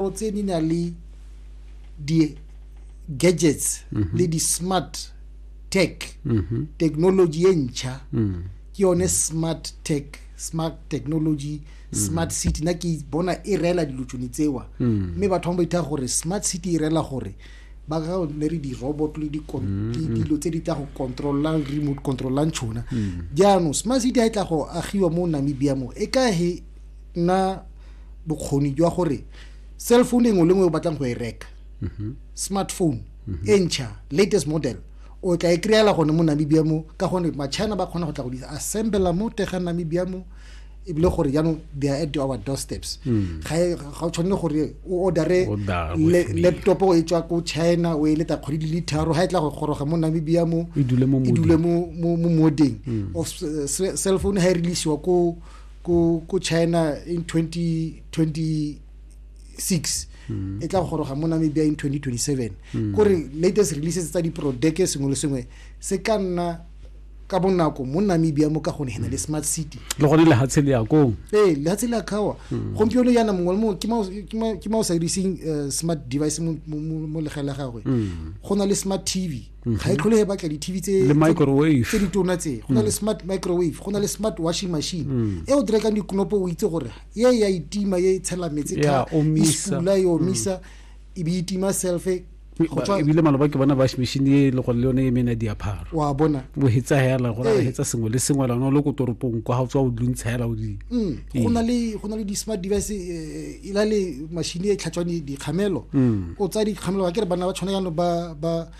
o tse di na le di-gadgets mhm. le di-smart tech mhm. technology e ntšha mm. ke yone smart tech smart technology mm. smart city na ke bona e reela dilo tsone tsewa mm. mme batho ba ba itha gore smart city e reela gore ba ga ne re di-robot le dilo tse di tla go controllang remote controllang tšhona jaanong smart city ga e tla go agiwa mo namibia mo e kahe nna bokgoni jwa gore cell phone engwe le ngwe o batlang go e reka mhm. smartphone mhm. e ntšha latest model o tla e kry-ela gone mo namibia mo ka gone machina ba kgona go tla go di assembela mo tega namibia mo ebile gore jaanong they are at our doorsteps hmm. ga e, o tshwanele gore o ordere laptop o e tswa ko china o e leta kgwedi di le tharo ga e tla go goroga mo namibia mo e dule mo modeng hmm. cell phone ga e releasiwa ko ku ku China in 2026 mm. e tla goroga mo Namibia in 2027 mm. kore latest releases tsa diprodeke sengwe le sengwe se ka nna ka bonako mo namibia mo ka gone hena le smart city le gone lehatshe le yakong ee lehatshe le akawa hmm. gompieno yana mongwe le mongwe ke ma o sa diriseng eh, smart device mo legela gagwe hmm. go na le smart tv mhm. ga e tlhole e batla di-tv tse di tona tse go na le mm. smart microwave go na le smart washing machine mm. e o direkang dikonopo o itse gore ye ya itima ye e tshela metse e sula e omisa mm. e be itima selfe ebile maloba ke bona bash machine e le gore le yone e mena diapharo wa bona bo hetsa hela gore re hetsa sengwe le sengwe lana le ko toropong kwa ga tswa o dintshela o di go na le go na le di smart device eh, e na le machine e tlhatswang dikgamelo mm. o tsaya dikgamelo ka ke re banna ba tshwana yanong ba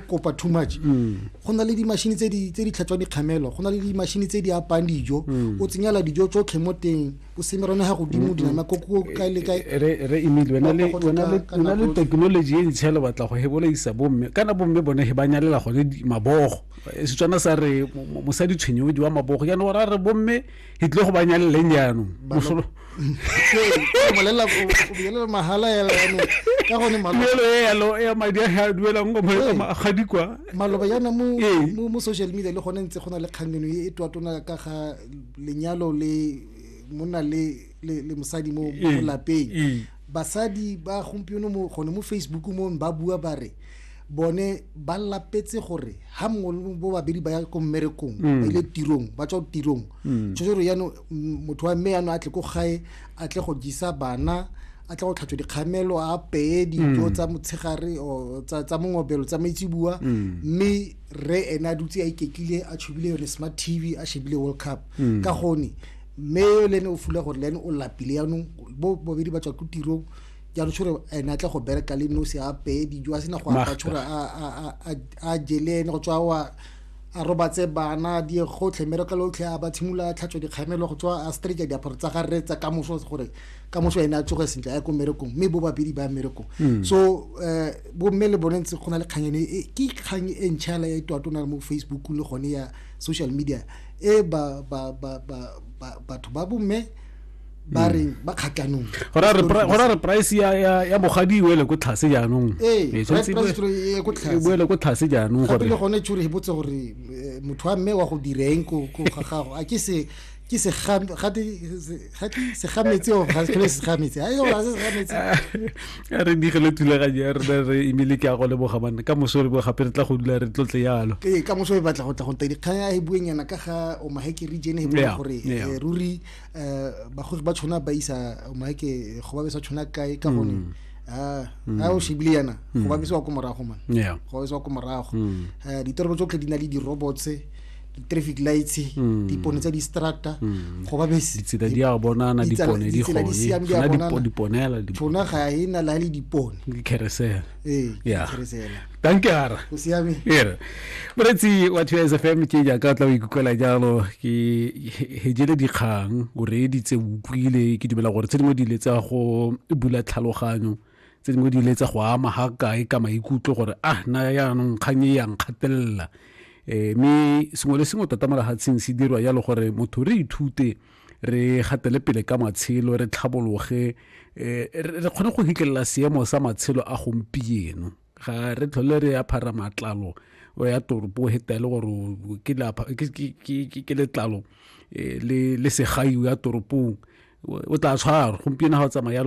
kopa too much mm. go na le dimashini tse di tlhatswang dikgamelo go na le dimashini tse di apang dijo mm. o tsenyela dijo tsotlhe mo teng o semerone ga godimo dinama ko kae le kaere emile wena le technology e ntshele batla go hebolaisa bomme kana bomme bone he ba nyalela gone mabogo setswana sa re mosadi tshwenyodi wa mabogo jaanong ora re bomme ke tlile go ba nyaleleng jaanong mosolo molelela bolelela mahala yala yanong ka gone tuelo e yalo ya madi a ga duelang go ga dikwa maloba yana mo mo social media le gone ntse go na le kgang eno e twatona ka ga lenyalo le monna le le mosadi mo lapeng Basadi ba gompieno mo gone mo Facebook mo ba bua ba re bone ba lapetse gore ha mongwe bo babedi ba ya ko mmerekong mm. ba ile tirong ba tswa tirong mm. tshwetse gore yano mm, motho wa mme yano a tle ko gae a tle go jisa bana a tle go tlhatswa dikgamelo a peye dijo tsa motshegare tsa mongobelo tsa maitsibua mme re ene a dutse a iketlile a tshubile yone smart tv a shebile world cup ka gone mme yo le ene o fula gore le ene o lapile yaanong bo bobedi ba tswa ko tirong jaanong tshore ene a tle go bereka le nosi a apeye dijo a sena go apa tshore a jele ene go tswa wa a robatse bana di gotlhe mmereko le otlhe a ba tshimolola a tlhatswa dikgamelo go tswa a streja diaparo tsa ga rre tsa ka moso gore ka moso ene a tsoge sentle a ko mmerekong mme bo babedi ba mmerekong hmm. so um bomme le bone ntse go na le kgang ene ke kgang e ntšhala e twatona mo facebook le gone ya social media e ba ba ba ba batho ba bomme ba hmm. reng ba kgatlhanong gora re price ya ya ya bogadi e wele ko tlhase jaanong ee, ee, e ko tlhase e wele ko tlhase jaanong gore le gone tshwere e botse gore eh, motho wa mme wa go direng ko ga gago a ke se ke se gate ga ke se ga metse o ga ke se ga metse ayo ga se ga metse a re di gele tula ga ya re re imile ke a go le boga manne ka moso re bo gape re tla go dula re tlotle yalo ke ka moso e batla go tla go tedi kgang ya e bueng yana ka ga o maheke region e bueng gore eh, ruri eh, ba go ba tshwana ba isa o maheke go ba be sa tshwana kae ka gone mm. ah, mm. a o shebile yana go mm. ba be sa go morago man go ba be sa go morago eh, ditorobo tsotlhe di na le di robots di-traffic lights mm. dipone tsa di-strata mm. go ba beseditsela di a bonana dipone di gone diponela tshona ga e na la le dipone ke keresela ee yeah. keresela danke ara go siame ere moretsi wa two sfm ke jaaka tla o ikutlwela jalo ke hejele dikgang o reeditse o utlwile ke dumela gore tse dingwe di ile tsa go bula tlhaloganyo tse dingwe di ile tsa go ama ga kae ka maikutlo gore ah na yaanong kgang e yang kgatelela um mme sengwe le sengwe tota mo lehatsheng se dirwa yalo gore motho re ithute re gatele pele ka matshelo re tlhabologe eh, re kgone go hitlelela seemo sa matshelo a gompieno ga re tlhole re aphara matlalo o ya toropo heta le gore ke letlalo eh, le segai ya toropong o tla tshwara gompieno ga o tsamaya